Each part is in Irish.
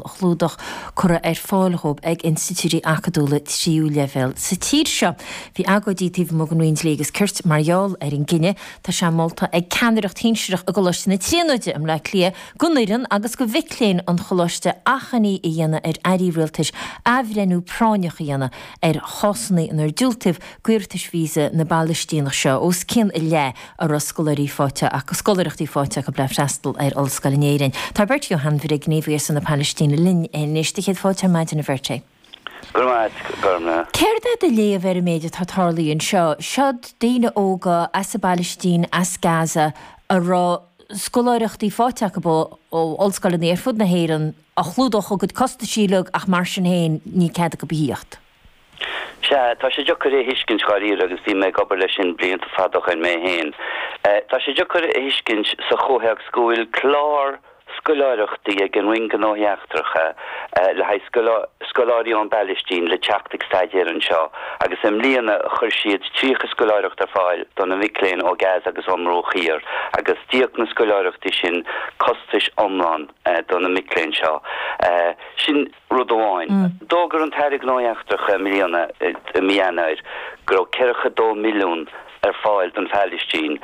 chlúdach cuireadh ar fáil dhóibh ag institiúidí acadúla tríú leibhéal sa tír seo. Bhí agóidí taobh amuigh den Roinn Dlí agus Cirt mar gheall ar an gcinneadh. Tá sé molta ag ceannaireacht shinsireach i gColáiste na Tríonóide i mBleá Cliath d'fhoireann agus do mhic léinn an Choláiste achainí a dhéanamh ar Airí Rialtais athbhreithniú práinneach a dhéanamh ar chásanna inar diúltaíodh d'iarratais visa na bPalaistíneach seo os cionn a leath a raibh scoláirí faighte acu, scoláireachtaí faighte acu le freastal ar ollscoil in Éirinn. Tá Beirt Johan Bhrieg, gníomhaí ar son na Palaistíne, linn anois. Do chéad fáilte ar maidin, a Bheirt. Go raibh maith agat, a Ghormfhlaith. Céard é do léamh ar an méid atá tarlaithe anseo? Seod daoine óga as an bPalaistín, as Gaza, a raibh scoláireachtaí faighte acu ó ollscoileanna ar fud na hÉireann, a chlúdódh a gcuid costaisí uilig ach mar sin féin, níl cead acu a thíocht. Sea, tá sé deacair é a thuiscint dháiríre agus bhí mé ag obair leis sin blianta fada ó shoin mé féin. Tá sé deacair a thuiscint sa chomhthéacs go bhfuil clár scoláireachtaí ag an Roinn Gnóthaí Eachtracha le haghaidh scoláirí ón bPalaistín le teacht ag staidéar anseo agus i mbliana chuir siad 30 scoláireacht ar fáil do na mic léinn ó Gaza agus ón mBruach Thiar agus d'íoc na scoláireachtaí sin costais iomlán do na mic léinn seo. Sin. Rud amháin, d'fhógair an tAire Gnóthaí Eachtracha i mbliana, i mí Eanáir, go raibh ceathracha dó milliún ar fáil don Phalaistín,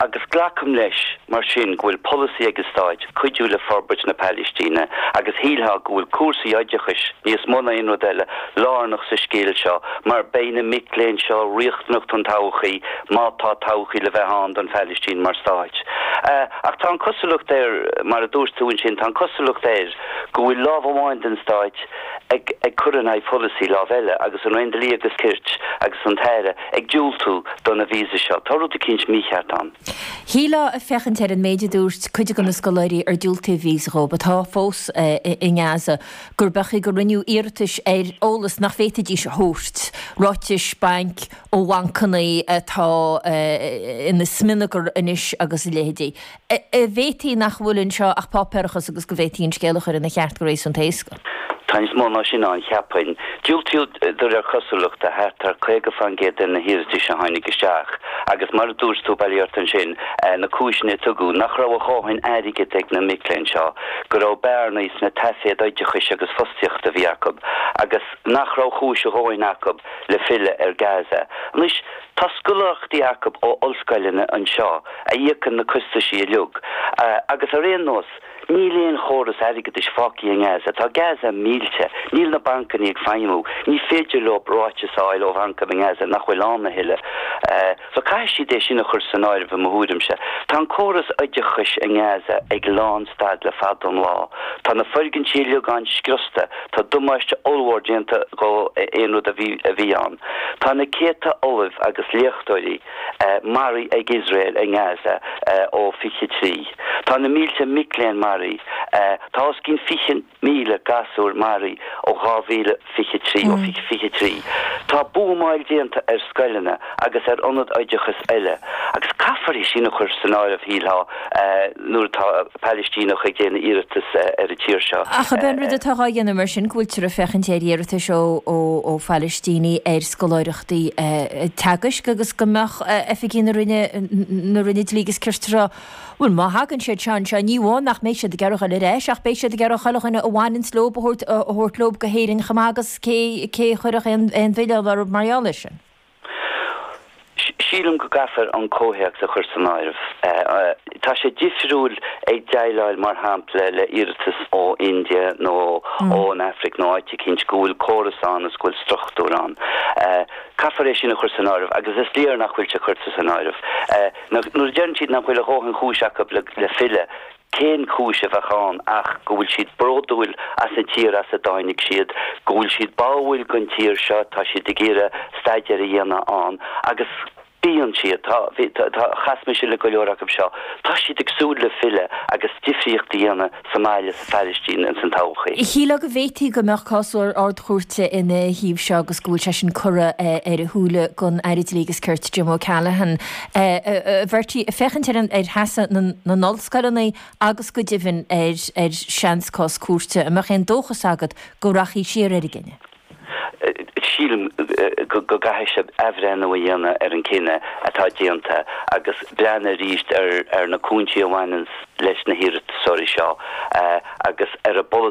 agus glacaim leis mar sin go bhfuil polasaí ag an Stát cuidiú le forbairt na Palaistíne, agus shílfeá go bhfuil cúrsaí oideachais, níos mó ná aon rud eile, lárnach sa scéal seo, mar beidh na mic léinn seo riachtanach don todhchaí, má tá todhchaí le bheith ann don Phalaistín mar Stát. Ach tá an cosúlacht ar, mar a dúirt tú ansin, tá an cosúlacht ar, go bhfuil lámh amháin den stáit ag ag cur in aghaidh pholasaí lámh eile, agus an Roinn Dlí agus Cirt agus an tAire ag diúltú do na víosa seo. Tá rud eicínt mícheart ann. Shílfeá, ag féachaint ar an méid a dúirt cuid de na scoláirí ar diúltaíodh víosa dhóibh, atá fós i nGaza, gurb amhlaidh gur rinneadh iarratais ar eolas nach bhféadfaidís a thabhairt, ráitis bainc ó bhancannaí atá ina smionagar anois agus a leithéidí. An bhféadfadh nach bhfuil anseo ach páipéarachas agus go bhféadfaí an scéal a chur ina cheart go réasúnta éasca. Tá níos mó ná sin ann, cheapfainn. Diúltaíodh do réir cosúlachta thart ar 50 fán gcéad de na hiarratais a tháinig isteach agus mar a dúirt tú, bhail díreach ansin na cúiseanna a tugadh, nach raibh a dhóthain airgid ag na mic léinn seo, go raibh bearnaí sna taiféad oideachais agus fostaíochta a bhí acu, agus nach raibh cúis a dhóthain acu le filleadh ar Gaza. Anois. Tá scoláireachtaí acu ó ollscoileanna anseo a íocann na costaisí uilig, agus ar aon nós, níl aon chóras airgeadais fágtha i nGaza, tá Gaza millte, níl na bancannaí ag feidhmiú, ní féidir leo ráiteas a fháil ó bhancanna i nGaza nach bhfuil ann a thuilleadh. So caithfidh siad é sin a chur san áireamh i mo thuairimse. Tá an córas oideachais i nGaza ag lán stad le fada an lá, tá na foirgintí uilig ann scriosta, tá damáiste ollmhór déanta do aon rud a bhí ann. Tá na céadta ollamh agus léachtóirí maraithe ag Iosrael i nGaza ó 23. Tá na mílte mic léinn maraithe. Tá os cionn 20,000 gasúr maraithe ó 2023, ó 2023. Tá buamáil déanta ar scoileanna agus ar ionaid oideachais eile. Agus caithfear é sin a chur san áireamh, shílfeá, nuair atá Pailistíneach ag déanamh iarratas ar an tír seo. Ach ab é an chaoi nó an rud atá á dhéanamh mar sin go bhfuiltear ag féachaint ar iarratais ó Phailistínigh ar scoláireachtaí teagaisc agus go mbeadh oifigigh na Roinne, na Roinne Dlí agus Cirt ag rá, bhuel, má thagann siad seo anseo, ní amháin nach mbeidh siad ag iarraidh dul ar ais ach beidh siad ag iarraidh chuile dhuine a bhaineann leo a thabhairt leo go hÉirinn chomh maith agus cé a chuirfeadh aon mhilleán orthu mar gheall air sin? Sílim go gcaithfear an comhthéacs a chur san áireamh. Tá sé difriúil ag déileáil, mar shampla, le iarratas ó India nó ón Aifric nó áit eicínt go bhfuil córas ann is go bhfuil struchtúr ann. Caithfear é sin a chur san áireamh agus is léir nach bhfuil sé curtha san áireamh. Nuair a deireann siad nach bhfuil a dhóthain chúis acu le filleadh, Cén chúis a bheadh ann ach go bhfuil siad bródúil as an tír as a dtáinig siad, go bhfuil siad báúil don tír seo, tá siad ag iarraidh staidéar a dhéanamh ann agus bhí siad, tá, bhí, tá, chas mise le go leor acu seo, tá siad ag súil le filleadh agus difríocht a dhéanamh sa mbaile, sa Phailistín, ins an todhchaí. Shílfeá go bhféadfadh go mbeadh cás Ard-Chúirte ina thaobh seo agus go bhfuil sé sin curtha ar a shúile don Aire Dlí agus Cirt, Jim O'Callaghan. A Bheirtí, ag féachaint ar sheasamh na n-ollscoileanna agus go deimhin ar seans cás cúirte, an mbeadh aon dóchas agat go rachfaí siar ar an gcinneadh? Sílim go gcaithfidh siad athbhreithniú a dhéanamh ar an gcinneadh atá déanta agus breathnú arís ar na cúinsí a bhaineann leis na hiarratasóirí seo agus ar an bpolasaí.